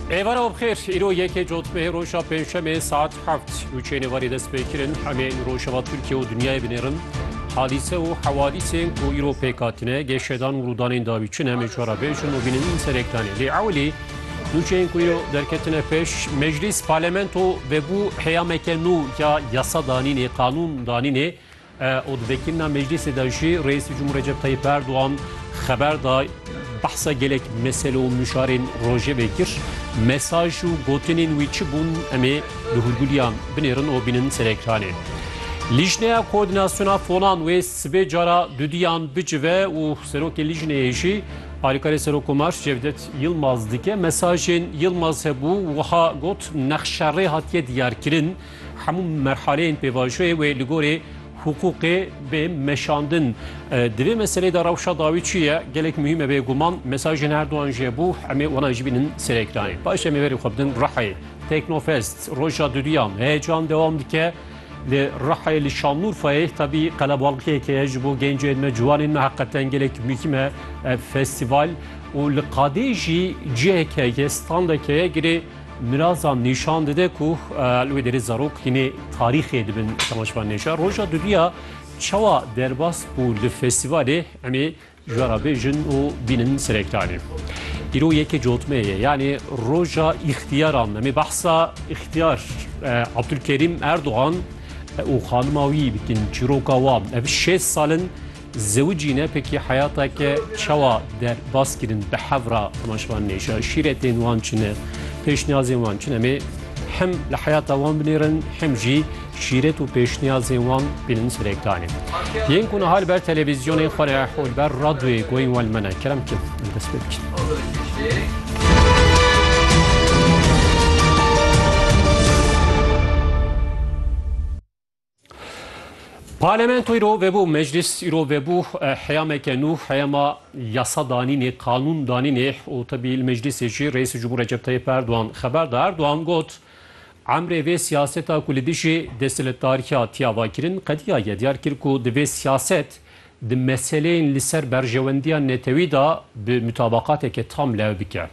Êvara bixêr, îro yekê cotmehê roja pêncşemê saet heft û çênê warê dest pê kirin hemê rojava Tirkiye û dinyayê binêrin. Hadîse û hewadîsên ku îro pêk hatine, geşedan û rûdanên dawî çin em ê ji we re bêjin û bînin serek danê. Lê ewilî nûçeyên ku îro derketine pêş, meclîs, parlamento vebû heyameke nû ya yasa danînê, qanûn danînê û di vekirina meclîsê de jî Reîsê Cumhur Recep Tayyîp Erdogan xeber da behsa gelek mesele û mişarên rojevê kir. Mesaj û gotinên wî çi bûn em ê li hûrgûliyan binêrin û bînin ser ekranê. Lîjneya Koordînasyona Fonan wê sibê cara duduyan bicive û serokê lîjneyê jî alîkarê Serokkomar Cevdet Yilmaz dike. Mesajên Yilmaz hebû wiha got, Nexşerê hatiye diyarkirin. Hemû merhaleyên pêvajoyê wê li gorî hiqûqê bê meşandin. Di vê meselê de rewşa dawî çi ye? Gelek muhîm e bêguman. Mesajên her duan jê bû. Emê wana jî bînin ser ekranê. Paşê em ê verê xwe bidin Rihayê. Teknofest, roja duduyan. Heyecan dewam dike. Li Rihayê li Şanlûrfayê tabî qelebalixiyek heye ji bo gencên me, ciwanên me heqeten gelek muhîm e ev festîval. Û li qadê jî cihek heye, standek heye girê Mirasan nîşan dide ku li wê derê zarok hînê tarîxê dibin temaşvan nêşa. Roja duviya çawa derbas bû li festîvalê em ê ji we re bêjin û bînin serektanê. Îro yekê cotmeyê ye yanê roja îxtiyaran em ê behsa îxtiyar Abdulkerîm Erdogan û xanima wî bikin çîroka wan ev şêst sal in Zewicî ne pekî heyata ke çawa der bas kirin bi hevra maşvan nêşa şîretên wan çi ne pêşniyazên wan çi ne mê hem li heyata wan binêrin hem jî şîret û pêşniyazên wan bînin serê kanê. Yên ku niha li ber televîzyonê xwe re hol ber radyoyê goyên wan li me ne kerem kir em dest pê bikin. Parlamento îro vebû, meclîs îro vebû heyameke nû, heyama yasa danînê, qanûn danînê û tibî li meclîsê jî Reîsê Cumhur Recep Tayyip Erdogan xeber da. Erdogan got, Emrê vê siyaseta ku li dijî desthiledarîya tîya va kirin qedîya ye. Diyar kir ku divê siyaset di meseleyên li ser berjewendiya netewî de bi mutabaqateke tam lew bike.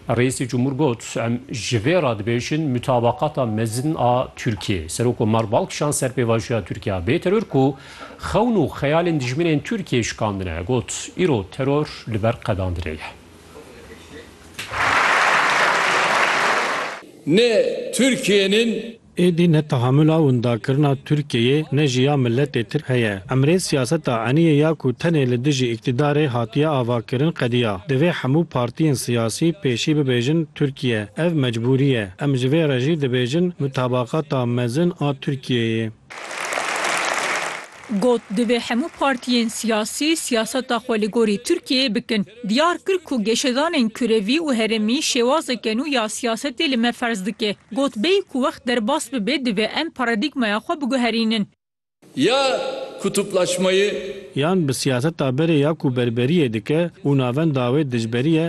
Reîsê Cumhur got, Em ji vê re dibêjin mutabaqata mezin a Tirkiyê. Serokomar bal kişand ser pêvajoya Tirkiya bê teror ku xewn û xeyalên dijminên Tirkiyê şikandine. Got, Îro teror li ber qedandinê ye. Ne Tirkiyên in Êdî ne tehamula windakirina Tirkiyeyê ne jî ya miletê tirk heye. Emrê siyaseta eniyê ya ku tenê li dijî îktîdarê hatiye avakirin qediya. Divê hemû partiyên siyasî pêşî bibêjin Tirkiye. Ev mecbûrî ye. Em ji vê re jî dibêjin mutabaqata mezin a Tirkiyeyê. Got, Divê hemû partiyên siyasî siyaseta xwe li gorî Tirkiyeyê bikin. Diyar kir ku geşedanên kurevî û herêmî şêwazeke nû ya siyasetê li me ferz dike. Got, Bêyî ku wext derbas bibe divê em paradîgmaya xwe biguherînin. Ya kutuplaşmayı. Yan bi siyaseta berê ya ku berberiyê dike û navenda wê dijberî ye,